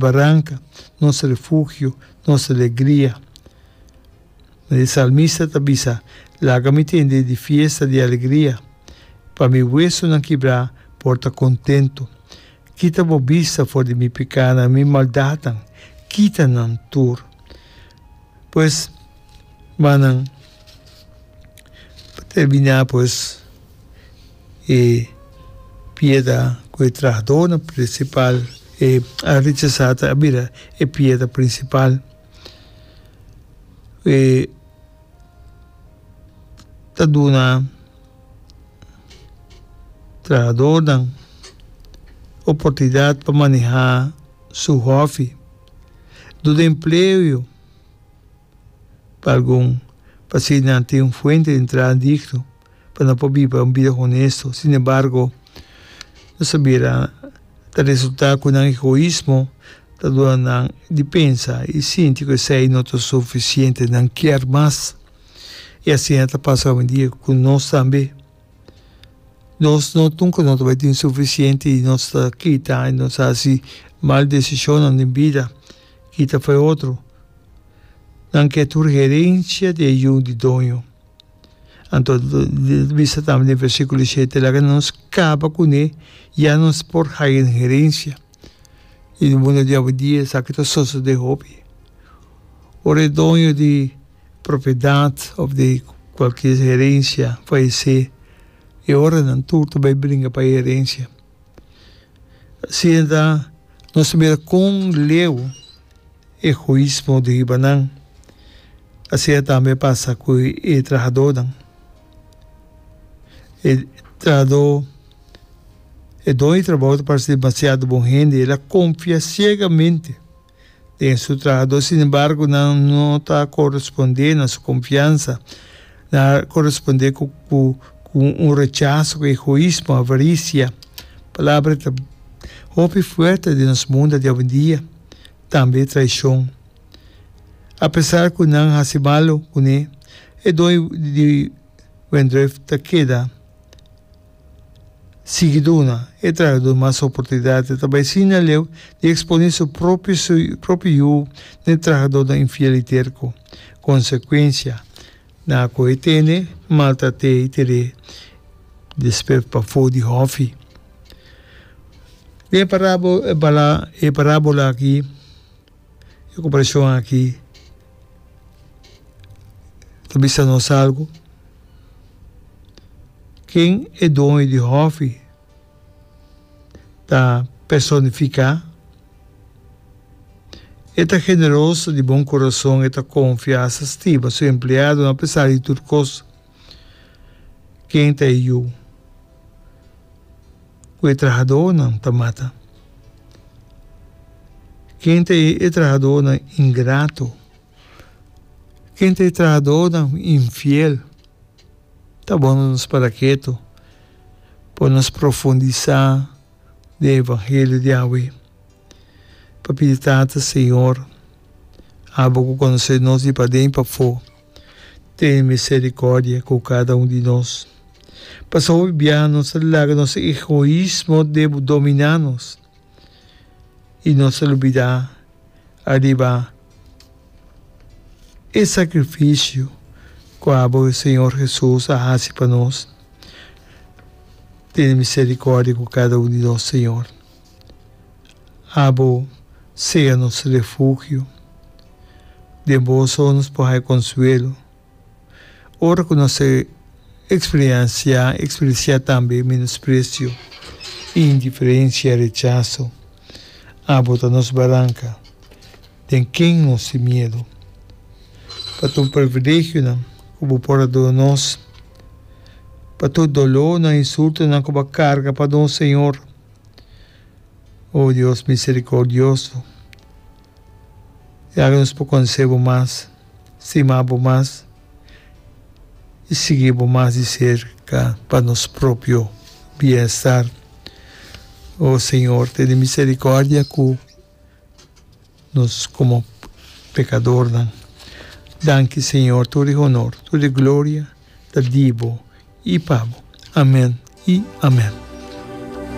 Baranca, nos refugio, nos alegria. Ma e salmista ta bisa, Laga mi tende di fiesta di alegria, pa mi wesonan kibrá por ta kontentu. Kita bo bista for di mi pekánan, mi maldatnan, kita nan tur. Pues, manan, pa terminá pues. e pieda ku e trahadónan prinsipal e a rechasá ta a bira e pieda prinsipal. E ta duna trahadónan oportunidat pa manehá su hòfi. Duna empleoyo. pa algun, pa si nan tin un fuente di entrada digno pa nan por biba un bida honesto. Sin embargo, nos a mira ta resulta cu nan egoismo ta duna nan di pensa y sinti cu esey no ta suficiente, nan kier mas. Y asina ta pasa ovindia cu nos tambe. Nos no nunca no ta bay tin suficiente y nos ta kita y nos ta haci mal decisionnan den bida. Kita fue otro. Nan ke tur herencia di e yu di doño. Anto bisa tambe den versiculo di shete laga nos caba cune ya nos por haya un herencia. Y di munda di awendia esaki ta sosode hopi. Ora e doño di propiedad of di cualkier herencia falece e ora nan tur ta bay bringa pa e herencia. Si e ta, nos ta mira kon leu egoismo di riba nan. Asi a tambe pasa ku e trahadónan. E trahadó, e doño di trabou ta parse demasiado bon hende, el a konfia siegamente. den su trahadó. Sin embargo, nan no ta corespondé na su confiansa. Nan a corespondé cu cu un rechazo, cu egoismo, avaricia. Palabra e ta hopi fuerte den nos munda di awendia. Tambe traicion. Apesar cu nan haci malo, cuné e don di Wendruff ta keda. Sigiduna, e trahador mas oportunidatnan ta bai sin na leu di eksponé su propio yu den trahadornan infiel i terko. Konsekuensia, nan a kohe tene, maltrat'é i tir'é despert pafó di hòfi. Den e parábola akí, E comparacion aki ta bisa nos algo, ken e doño di hòfi ta personifica? E ta generoso, di bon corazon, e ta confiasa stiba su empleadonan apesar di tur cos. Ken ta e yu ku e trahadónan ta mata? Ken ta e trahadónan ingrato? Ken ta e trahadónan infiel? Ta bon pa nos para ketu, pa nos profundisá den e evangelio di Yahweh, pa pidi Tata Señor, abo ku konosé nos di paden pafó, Ten misericordia cu cada un di nos. Pasa hopi bia nos a laga nos egoismo domina nos y nos a lubida ariba e sacrificio cu abo e Señor Jesus a haci pa nos. Ten misericordia cu cada un di nos, Señor. Abo sea nos refugio, den Bo so nos por haya consuelo. Ora cu nos a experiencia, experiencia tambe menosprecio, indiferencia, rechazo, Abo ta nos baranca. Den ken nos tin miedu? Pa tur privilegionan ku bo por a duna nos, pa tur dolónan i insultonan ku bo a karga pa nos, Señor. O Dios miserikordioso, yaga nos por konosé bo mas, stima bo mas i sigui bo mas di serka pa nos propio bienstar. O Señor, tene miserikòrdia ku. nos komo pekadornan. Danki Señor, tur di honor, tur di gloria ta di bo i pa bo. Amen i amen.